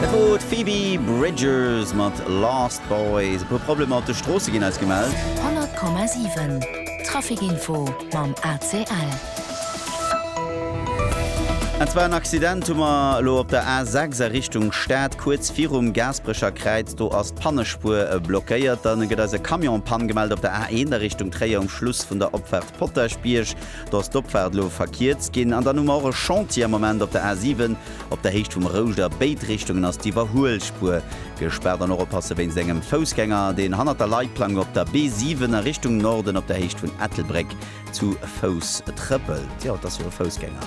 Dat wor d'Phoebe Bridgers mat Lost Boys. E puer Problemer op de Stroosse ginn eis gemellt. 100,7 Traficinfo mam ACL. An zwar en Accident hu mer elo op der A6 a Richtung Stad, kuerz virum Gaasperecher Kräiz. Do ass d'Pannespuer blockéiert. Dann gëtt eis e Camion en Panne gemellt op der A1 a Richtung Tréier um Schluss vun der Opfaart Potaschbierg. Do ass d'Opfaart elo verkierzt ginn. An dann hu mer och e Chantier am Moment op der A7. Op der Héicht vum Rouscht a béid Richtungen ass d'Iwwerhuelspuer gespaart an och oppasse wéinst engem Foussgänger, deen hannert der Leitplank op der B7 a Richtung Norden op der Héicht vun Ettelbréck zu Fouss trëppelt. Jo, et ass jo e Foussgänger.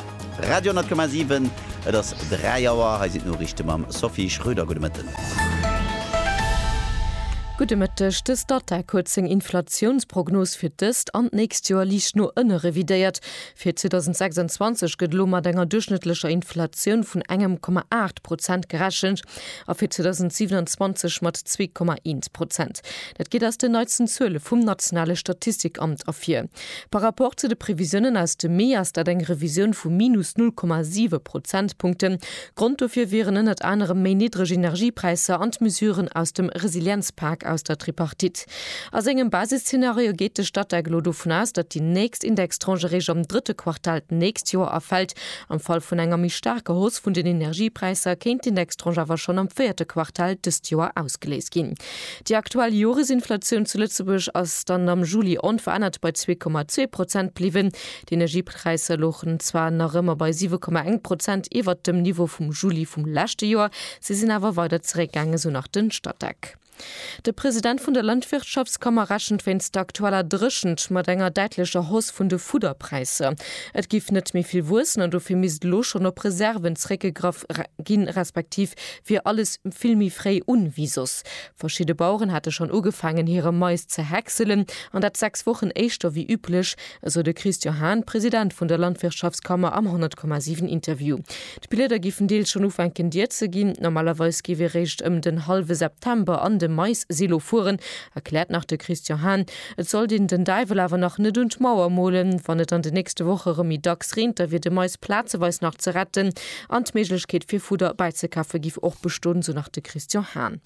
Radio 10,7, et ass 3 Auer, hei sinn d'Noriichte mam Sophie Schröder. Gudde Mëtten. Gudde Mëtteg. De Statec huet seng Inflatiounsprognos fir d'ëst an d'nächst Joer liicht no ënne revidéiert. Fir 2026 gëtt elo mat enger duerchschnëttlecher Inflatioun vun engem Komma aacht Prozent gerechent a fir 2027 mat zwee Komma eent Prozent. Dat geet aus den neitsten Zuele vum nationale Statistikamt ervir. Par Rapport zu de Previsiounen aus dem Mee ass dat eng Revisioun vu minus null Komma siwe Prozentpunkten, Grond dofir wieren ënnert anerem méi niddreg Energiepräisser an d'Mesuren aus dem Resilienzpak aus der Tripartite. A sengem Basisszenario geet de Statec elo dovun aus, datt déi nächst Indextranche eréischt am drëtte Quartal d'nächst Joer erfält. Am Fall vun enger méi staarker Hausse vun den Energiepräisser kéint d'Indextranche awer schonn am véierte Quartal dëst Joer ausgeléist ginn. Déi aktuell Joresinflatioun zu Lëtzebuerg ass dann am Juli onverännert bei zwee Komma zwee Prozent bliwwen. D'Präisser louchen zwar nach ëmmer bei 7,1 Prozent iwwert dem Niveau vum Juli vum leschte Joer, se sinn awer weider zeréckgaangen, sou nach de Statec. De President vun der Landwirtschaftskammer rechent wéinst der aktueller Dréchent mat enger däitlecher Hausse vun de Fudderpräisser. Et géif net méi vill wuessen an dofir misst elo schonn op Reserven zeréckgegraff ginn, respektiv wier alles vill méi fréi un wéi soss. Verschidde Baueren hate schonn ugefaangen, hire Mais ze häckselen, an dat 6 Wochen éischter wéi üblech, esou de Christian Hahn, President vun der Landwirtschaftskammer am 100,7 Interview. D'Blieder géifen deels schonn ufänken dier ze ginn. Normalerweis géif ee réischt ëm den hallwe September an de Mais-Silo fueren, erkläert nach de Christian Hahn. Et sollt een den Däiwel awer nach net un d'Mauer molen. Wann et an de nächste Woche erëm méi dacks reent, da wier de Mais. plazeweis nach ze retten an d'Méiglechkeet fir Fudder bäizekafe giff och bestoen, sou nach de Christian Hahn.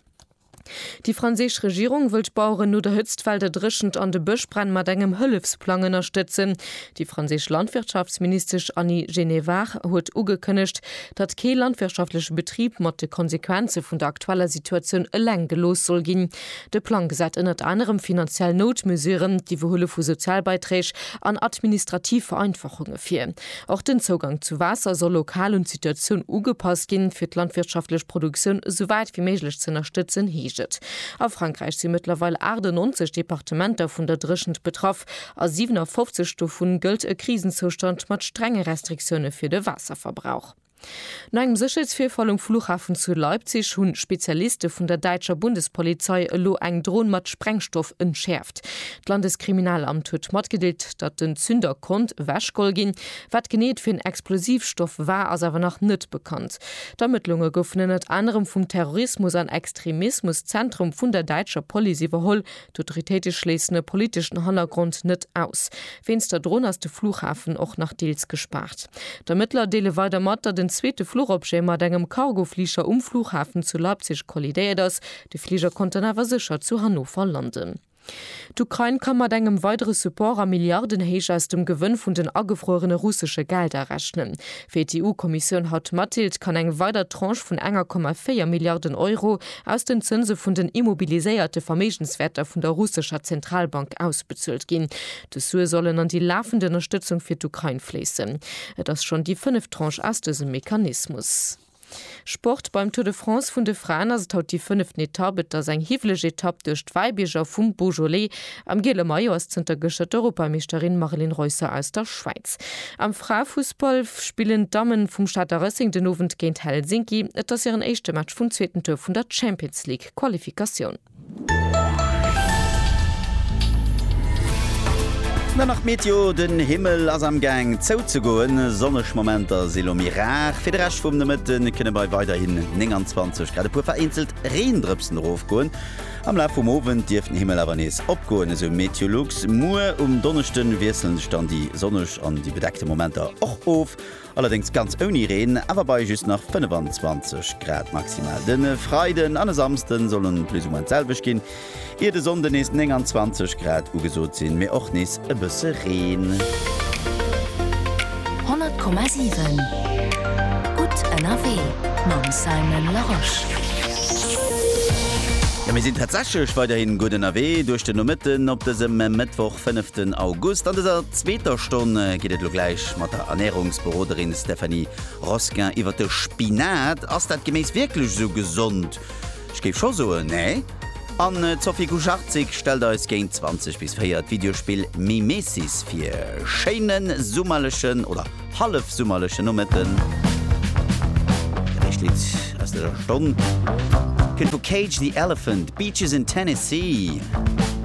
Déi franséisch Regierung wëll d'Baueren no der Hëtztwell der Dréchent an de Bëschbränn mat engem Hëllefsplang ënnerstëtzen. Déi franséisch Landwirtschaftsministesch Annie Genevard huet ugekënnegt, datt kee landwirtschaftleche Betrib mat de Konsequenze vun der aktueller Situatioun eleng gelooss soll ginn. De Plang gesäit ënnert anerem finanziell Noutmesuren, d'Iwwerhuele vu Sozialbeiträg an administrativ Vereinfachunge vir. Och den Zougang zu Waasser soll lokal un d'Situatioun ugepasst ginn, fir d'landwirtschaftlech Produktioun esou wäit wéi méiglech z'ënnerstëtzen, heescht et. A Frankräich si mëttlerweil 98 Departementer vun der Dréchent betraff. A 57 dovu gëllt e Krisenzoustand mat strenge Restriktioune fir de Waasserverbrauch. No engem Sécherheetsvirfall um Flughafen zu Leipzig hunn Spezialiste vun der däitscher Bundespolizei elo eng Dron mat Sprengstoff entschäerft. D'Landeskriminalamt huet matgedeelt, datt den Zünder konnt ewechgeholl ginn. Wat genee et fir en Explosivstoff war, ass awer nach net bekannt. D'Ermëttlunge goufen ënnert anerem vum Terrorismus an Extremismus-Zentrum vun der däitscher Police iwwerholl. D'Autoritéite schléissen e politeschen Hannergrond net aus. Wéinst der Dron ass de Flughafen och nach deels gespaart. D'Ermëttler deele weider mat, datt en zweete Fluchobjet mat engem Cargofliger um Flughafen zu Leipzig kollidéiert ass. De Fliger konnt dann awer sécher zu Hannover landen. D'Ukrain ka mat engem weidere Support a Milliardenhéicht aus dem Gewënn vun den agefruerene russesche Gelder rechnen. Wéi d'EU-Kommissioun haut matdeelt, kann eng weider Tranche vun 1,4 Milliarden Euro aus den Zënse vun den immobiliséierte Verméigenswäerter vun der russescher Zentralbank ausbezuelt ginn. Dës Sue sollen an déi lafend Ënnerstëtzung fir d'Ukrain fléissen. Et ass schonn déi fënneft Tranche aus dësem Mechanismus. Sport, Beim Tour de France vun de Fraen ass et haut déi fënneften Etapp. Et ass eng hiwweleg Etapp duerch d'Wäibierger vum Beaujolais. Am giele Maillot ass zënter gëschter d'Europameeschterin Mareline Reusser aus der Schwäiz. Am Fraefussball spillen d'Damme vum Stater Racing den Owend géint Helsinki. Et ass hiren éischte Match vum zweeten Tour vun der Champions League-Qualifikatioun. Dann nach d'Meteo, Den Himmel ass am Gaang zouzegoen, sonneg Momenter si lo méi rar. Fir de Rescht vum Nomëtte kënne bei weiderhin 29 Grad e puer vereenzelt Reendrëpsen erofgoen. Am Laf vum Owend dierft den Himmel awer nees opgoen, esou Meteolux. Muer um Donneschde wiessele sech dann déi sonneg an déi bedeckte Momenter och of. Allerdéngs ganz ouni Reen, awer bei just nach 25 Grad maximal. De Freiden an e Samsde solle plus ou moins d'selwecht ginn, ier de Sonnde nees 29 Grad ugesot sinn, mee och nees e bësse Reen. 100,7 gutt ënnerwee mam Simon Larosche. Jo, mir sinn tatsächlech weiderhin gutt ënnerwee duerch den Nomëtten op dësem Mëttwoch, 5 den August. An dëser zweeter Stonn geet et elo gläich Mat der Ernärungsberoderin Stéphanie Rosquin iwwer de Spinat. Ass dat Geméis wierklech esou gesond? Ech géif scho soen, nee. An d'Sophie Kucharczyk stellt eis géint 20 bis 4 d'Videospill Mimesis vir. Schéine summerlechen oder hallefsummerlechen Nomëtten. Dat éischt Lidd aus dëser Stonn kënnt vu Cage the Elephant, Beaches in Tennessee.